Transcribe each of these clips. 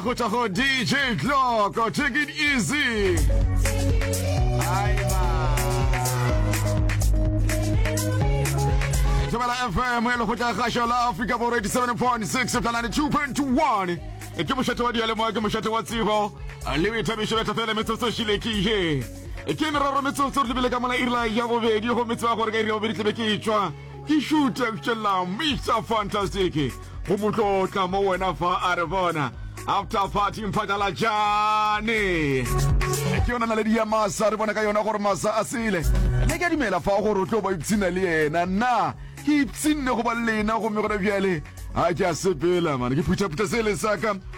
Tago Tago DJ Glock, oh, take it easy. Tumela FM, e le go tla gasho la Africa Borwa 87.6 fela 92.1. E ke mošate wa dialemo ke mošate wa tsebo le o ithabišo betla fela metsotso šile ke ye e ke meraro metsotso re lebile ka mola irela ya bobedi go metse wa gore ka iri ya bobedi tlebe ke e tšwa Ke šuthe fšella Mister Fantastic go mo tlo tla mo wena fa a re bona after party mphatlalatšane ke yona naledi ya masa re bona ka yona gore masa a sele ne ke dumela fa gore o tlo ba ipshina le yena nna ke ipshinne go ba lena gomme gona bjale a ke a sepela mane ke phuthaphutha sele saka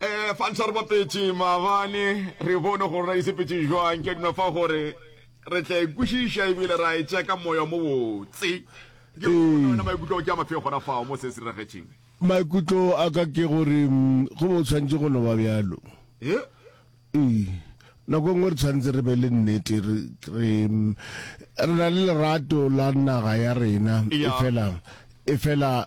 um falsa re bapetše maabane re bone gore ra isepetše jwang ke duna fa gore re tla ikwešiša ebile ra e tšea ka moya mo botse ke ona maikutlo ke a mafeo gona fao mo se se diragetšeng maikutlo a ka ke gore go bo tshwanetse go no ba bjalo ee nako nngwe re tshwanetse re be le nnete re re na le lerato la naga ya rena e fela e fela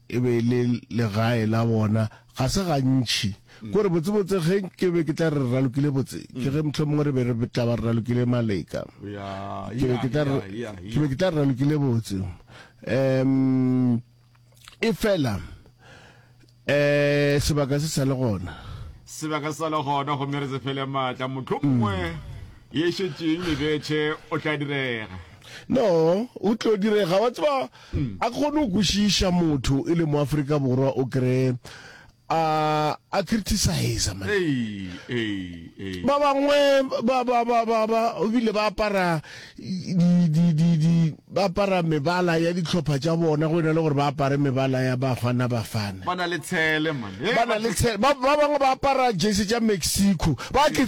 e be e le legae la bona, ga se gantši. Kore botsebotse ge ke be ke tla re re ralokile botse, ke ge mohlomongwe re be re tla ba re ralokile maleka. Ke be ke tla re, ke be ke tla re ralokile botse. Um, efela, um, sebaka se sa le gona. Sebaka se sa le gona, gomme re se fele maatla. Mohlomongwe ye e šetšeng e bethe, o tla direga. No, o tlo direga. Wa tseba, A ke kgone go kwešiša motho e le mo Afrika Borwa o kree a a criticize man. Ba bangwe ba ba ba ba ba bile ba apara di di di di ba apara mebala ya ditlhopha tša bona go ena le gore ba apare mebala ya ba gwana ba fana. Ba na le tshele man. Ba na le tshele. Ba bangwe ba apara jersey tša Mexico. Ba ke